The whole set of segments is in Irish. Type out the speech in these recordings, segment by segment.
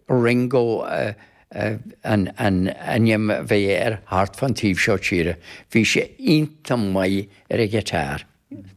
Ringo an t-ainm a bhí air thart fán taobh seo tíre. Bhí sé iontach maith ar an ghiotár.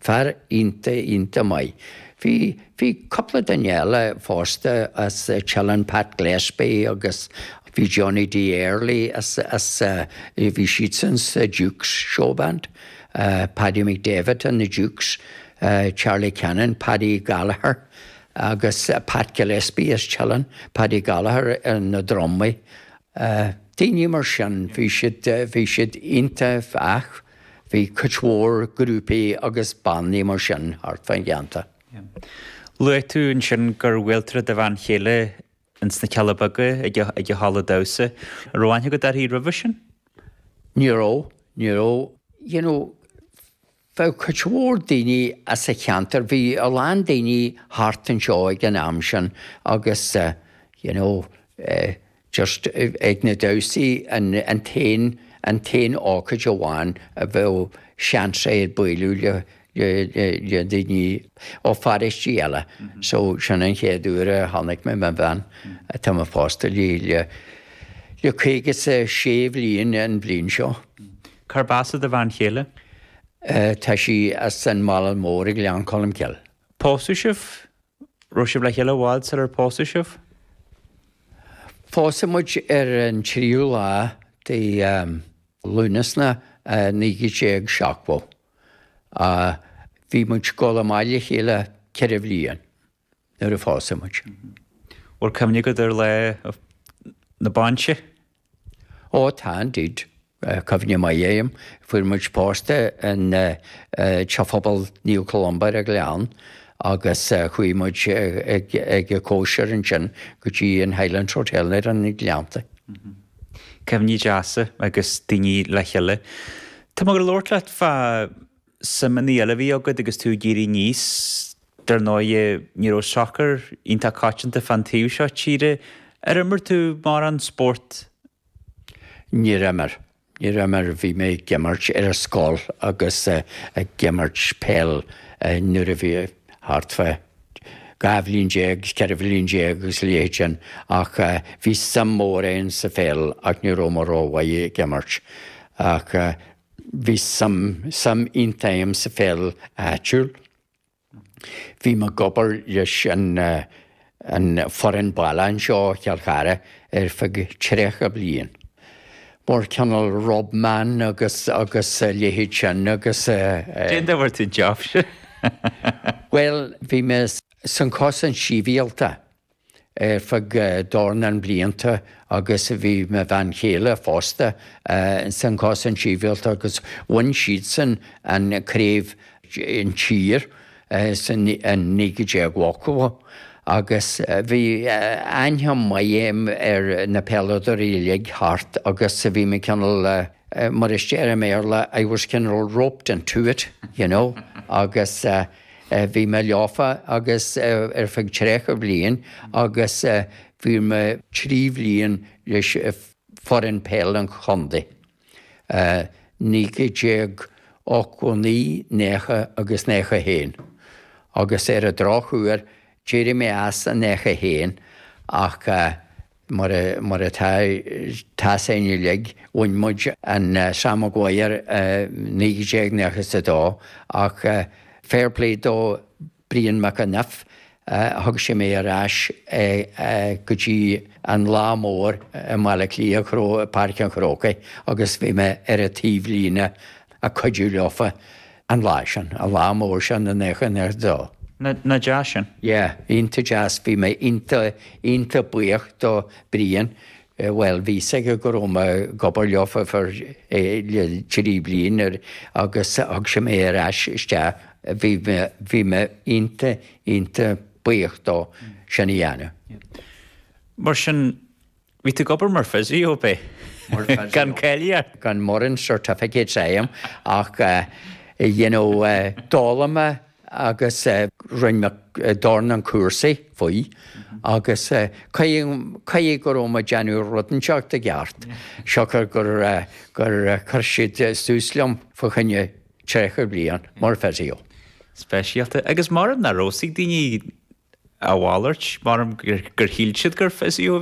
Fear iontach, iontach maith. Bhí, bhí cúpla duine eile fosta as Teileann, Pat Gillespie agus bhí Johnny D Early as, as, bhí siadsan sa Dukes Showband, Paddy McDavitt and the Dukes, Charlie Cannon, Paddy Gallagher. agus Pat Gillespie as Teileann, Paddy Gallagher ar na drumaí, daoine mar sin, bhí siad iontach ach bhí cuid mhór grúpaí agus bannaí mar sin thart fán cheantar. Luaigh tú ansin gur bhuail tú le do bhean chéile ins na Cealla Beaga ag an halla damhsa. An raibh aithne agat uirthi roimhe sin? Ní raibh, ní raibh. You know, bheadh cuid mhór daoine as an cheantar, bhí a lán daoine thart anseo ag an am sin agus you know just ag na damhsaí an t-aon, an t-aon ócáid amháin a bheadh seans agat bualadh le, le daoine ó pharóistí eile so sin an chéad uair a chonaic mé mo bhean atá mé pósta léi le, le caoga 's a sé bhliain an bhliain seo. Cárb as do bhean chéile? Tá sí as an Bhaile Mhór i nGleann Cholm Cille. Pósadh sibh? Raibh sibh le chéile i bhfad sular pósadh sibh? Pósadh muid ar an tríú lá de Lúnasa 1970. Bhí muid ag gabháil amach le chéile ceithre bhliain. nuair a pósadh muid. Bhfuil cuimhne agat ar lá na bainse? Ó tá indeed. Cuimhne mhaith agam. Fuair muid pósta i dTeach Pobail Naomh Columba ar an Ghleann agus chuaigh muid ag cóisir ansin go dtí an Highlands Hotel ar na Gleannta. Cuimhní deasa agus daoine le chéile. Tá mé ag labhairt leat fá suimeanna eile a bhí agat agus tú ag éirí aníos. Dar ndóighe, ní raibh sacar iontach coitianta fán taobh seo tíre. Ar imir tú mórán spóirt? Níor imir. Níor imir. Bhí mé ag imirt ar an scoil agus ag imirt peil nuair a bhí thart fá dhá bhliain déag, cheithre bhliain déag agus a leithéid sin. Ach bhí suim mhór agam sa pheil ach ní raibh mé rómhaith ag imirt. Ach Bhí suim iontach agam sa pheil áitiúil. Bhí mé ag obair leis an fhoireann baile anseo i gCill Chartha ar feadh tríocha bliain. Mar cineál rub man agus a leithéid sin agus. Cén dóigh a bhfuair tú an jab sin? Bhuel, bhí mé sa Chosaint Shibhialta. ar feadh dornán blianta agus bhí mo bhean chéile fosta sa Chosaint Shibhialta agus bhain siadsan an craobh an tír i 1980 agus bhí aithne mhaith a'm ar na peileadóirí uilig thart agus bhí mé cineál mar is deir i mBéarla I was cineál roped into it you know agus Bhí mé leofa agus ar feadh tríocha bliain agus bhí mé trí bliain leis foireann peil an chontae, 1989, 90 agus 91, agus ar an drochuair d'éirigh mé as i 91 ach Mar atá a fhios againn uilig, bhain muid an Sam Maguire i 1992 ach fair play do Brian McEniff, thug sé mé ar ais go dtí an lá mór i mBaile Átha Cliath, Páirc an Chrócaigh agus bhí mé ar an taobhlíne ag cuidiú leofa. an lá sin, an lá mór sin i 92. Nach deas sin? Yeah, iontach deas. Bhí mé iontach, iontach buíoch do Brian. Bhuel, bhí a fhios aige go raibh mé ag obair leofa ar feadh trí bliana agus thug sé mé ar ais isteach. Bhí mé, bhí mé iontach, iontach buíoch dó sin a dhéanamh. Mar sin. Bhí tú ag obair mar physio, b'é? Mar physio. Gan cáilíocht? Gan mórán certificates a'm ach eh you know eh d'fhoghlaim mé agus eh rinne mé eh dornán cúrsaí faoi agus eh caithfidh caithfidh go raibh mé ag déanamh rud inteacht i gceart siocair gur eh gur eh chuir siad eh suas liom fá choinne tríocha bliain mar physio. Speisialta. Agus mar nach raibh a fhios ag daoine a mhalairt, mara gur shíl siad gur physio a bhí